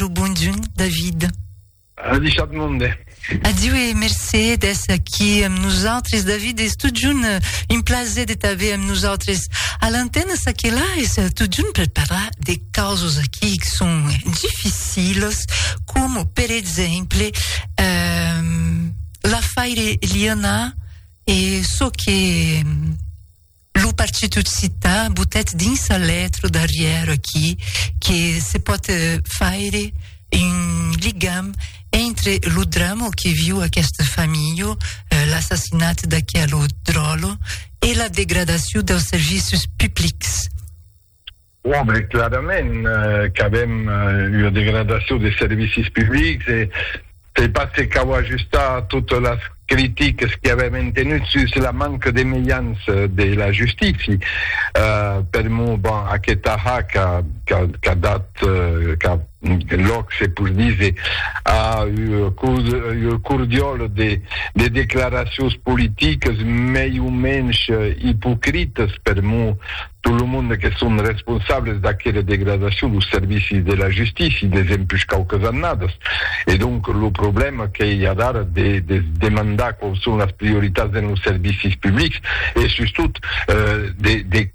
lo bonjun David. Adishat monde. Adieu e mercé d'es aquí amb nosaltres, David. Es tot junt euh, un plaser de t'aver amb nosaltres. A l'antena, ça que là, es euh, tot junt per parlar de causes aquí que sont difficiles, com per exemple euh, la faire Liana e ce que Lo partit occità botèt dins sa letra darrièra aquí que se pòt faire un ligam entre lo drama que viu aquesta familha, l'assassinat d'aquela dròlla, e la degradacion dels servicis publics. Òbli clarament qu'avèm ua degradacion des servicis publics e se pas que cau ajustar totes las critiques que avèm entenut sus la manca de mejans de la justícia. Per mo, bon, aquest ahac qu'a dat qu'a lòc, se pos díser, a ua cordiòla de declaracions politiques mei o mensh ipocritas per mo, tot lo monde que son responsables d'aquera degradacion los servicis de la justícia desempush quauques annadas e donc lo problèma que i a d'ara de de se demandar quaus son las prioritats dens los servicis publics e sustot de de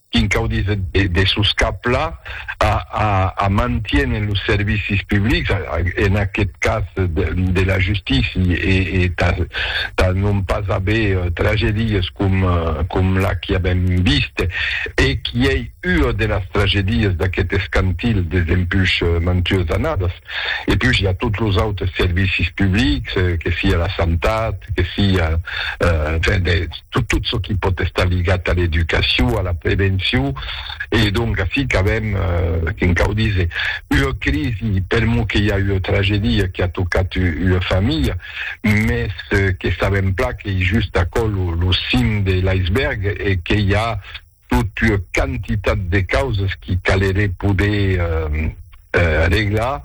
quin cau díser de de soscaplar a mantiene los servicis publics, en aqueth cas de la justícia, e tà non pas aver tragedies com la qui avèm vist, e qui ei ua de las tragedies d'aqueth escantil des empuish mantues annadas. E puish i a tots los autes servicis publics, que sia la santat, que sia tot çò qui pòt estar ligat a l'educacion, a la prevencion, e donc ací qu'avèm, que'n cau díser, ua crisi, per mot que i a ua tragedia qu'a tocat ua familha, mès que sabèm plan qu'ei just aquò lo cim de l'iceberg e que i a tot ua quantitat de causas qui caleré poder reglar,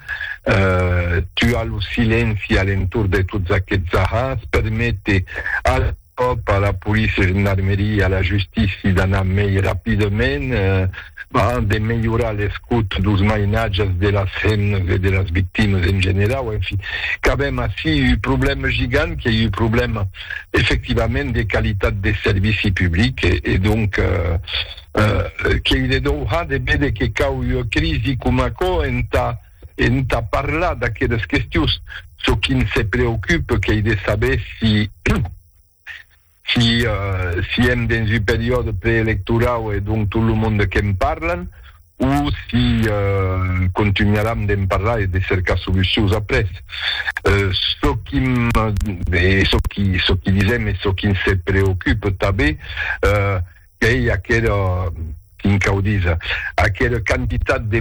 tuar lo silenci a l'entorn de tots aquests ahans, perméter a la. pòp, a la policia e gendarmeria, a la justícia d'anar mei rapidament, a de melhorar l'escut dos mainatges de las hemnas e de las victimas en generau, en fin, qu'avèm ací un problèma gigant, qu'ei un problèma efectivament de qualitat de servici public e donc qu'ei de dohar de véder que cau ua crisi coma aquò entà Entà parlar d'aqueles questions, çò qui n' se preocupe qu'ei de saber si si si èm dens un periòde preelectorau e donc tot lo monde que'n parlan o si contunharam d'en parlar e de cercar solucions après. Çò qui m' e çò qui çò qui disèm e çò qui n' se preocupe tanben qu'ei aquera, quin cau díser, aquera quantitat de